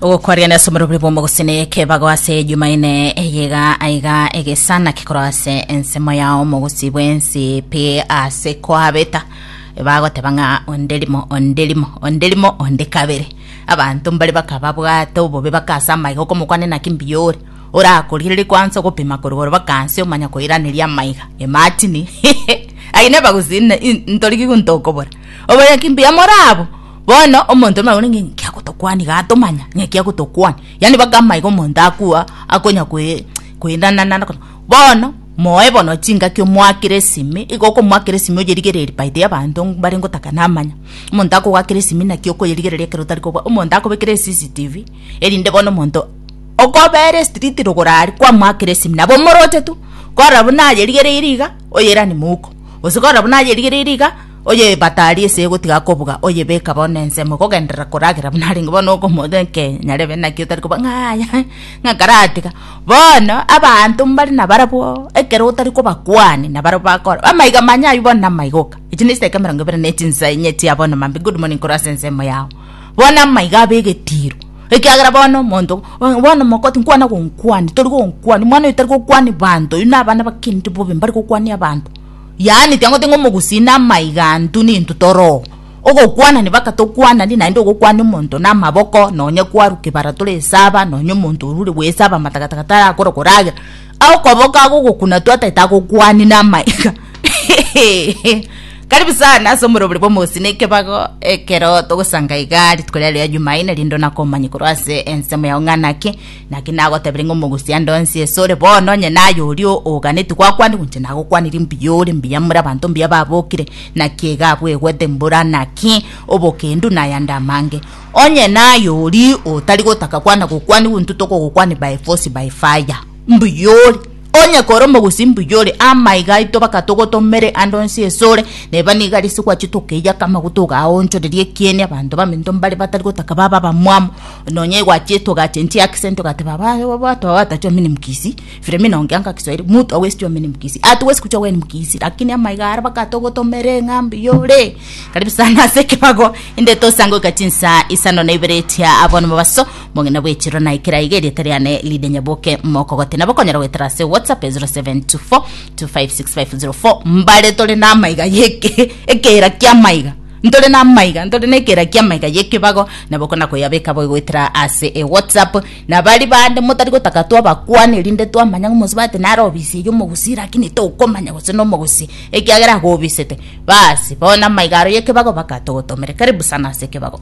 ogokwarigana ase oborobori bw'omogusini kebago ase ejumaine eyega aiga egesana kekoro ase ensemo yao omogusi bwensi pi ase kwabeta bagoteba ng'a onde rimo onde rimo onde rimo onde kabere abanto mbare bakaba bwate obobe bakasa amaiga okomokwane naki mbuya ore orakorigereria kwansa ogopima koruga ore bakansi omanya koiraneria amaiga imagine aye nebagusi ne- in- ntorigigu ntokobora oboyaki mbuya morabo Bono omonto onde nabore ng'a inki agotokwana iga atomanya ng'a eki agotokwana, yaani mpaka amaiga omonto akwa akonya kwe kwerana naende akonya bono moe bono chingaki omoakere esimi igo okomoakera esimi oyerigereiri baita ya abanto mbare ngotaka namanya, omonto akogoakera esimi naki okoyerigereria ekero otari kobua omonto akobekera ecctv erinde bono omonto okobera estreet rogoro aria kwamoakera esimi nabo omoroche tu korora buna ayerigereiri iga oyeranie mouko gose korora buna ayerigereiri iga. Oyebatari ese egotiga kobuga, oyebeka bono ensemo, kogenderera koragera buna arenge bono okomoota enkenya, nyarebe naki otari koba ng'aya, ng'a karatiga. Bono abanto mbare nabarabwo, ekero otari kobakwani, nabarabwo bakora, amaiga manya aywo bono namaiga oka. Echi ne chidaeka emerongo ebere ne chinsa inye chia bono mambia good morning korwa ase ensemo yao. Bono amaiga abe egetiro, ekiagera bono omonto bono bono omokoti nkwana gonkwania, tori gonkwania, omwana oyo tari gokwani banto, oywo nabana bakenire bobe mbare gokwania abanto. yaani tiango tinga omogusii na amaiga antu nintu toroo ogokwana nibaka tokwanani naende ogokwana omonto na amaboko nonye kwaru kebara tore esaba nonye omonto orure bwesaba matagataga tarakore koragera agokoboka agogokuna tu ataete agokwani na amaiga hehehehe karibu sana ase omorobori bwa omogusi na ekebago ekero togosanga igaa rituko riaria ria jumaine rinde onake omanye korwa ase ensemo yao ng'a naki Naki nagotebirie ng'a omogusii ande onsi esore bono, onye naye oria oganetie gwakwanire, goincha nagokwanirie mbuya ore mbuya amo abanto mbuya babokire, naki iga abwo egwete mbura naki obokendu na ayande amange. Onye naye oria otari gotaka kwana gokwanigwa, intwe tokogokwania by force by fire. Mbuya ore. Onye kore omogusi mbuya ore amaiga aito bakatogotomere ande onsi esore, neba niga risigwa chitokeiaka amaguta ogaonchoreria ekieni abanto baminto mbare batari gotaka babe abamwamu. Nonya igwa chitoga ache nchi accent ogateba aba aba batu aba batachi omini mkisii. Filemina ongea nga kiswahili mtu awesi chwa omini mkisii. Atuwesi kuchwa weni mkisii lakini amaiga aria bakatogotomere ng'a mbuya ore. Karibu sana ase ekebago inde tosangoke chinsa isano na ibere chia abono mobaso. Omong'ina bw'echiro naikere aiga erieta riane Lydia Nyaboke Mokogoti. Nabo okonyara goetera ase WhatsApp e 0724256504. Mbare tore namaiga yeke ekeera kiamaiga ntore namaiga ntore nekeera kiamaiga yekebago nabo okona koyabeka boigo goetera ase e WhatsApp na bari bande motari gotaka twabakwane erinde twamanya ng'a omonsi bate nare obisi eye omogusii lakini tokomanya gose nomogusii ekiagera agobisete. Basi bono amaiga aro yekebago baka togotomere. Karibu sana ase ekebago.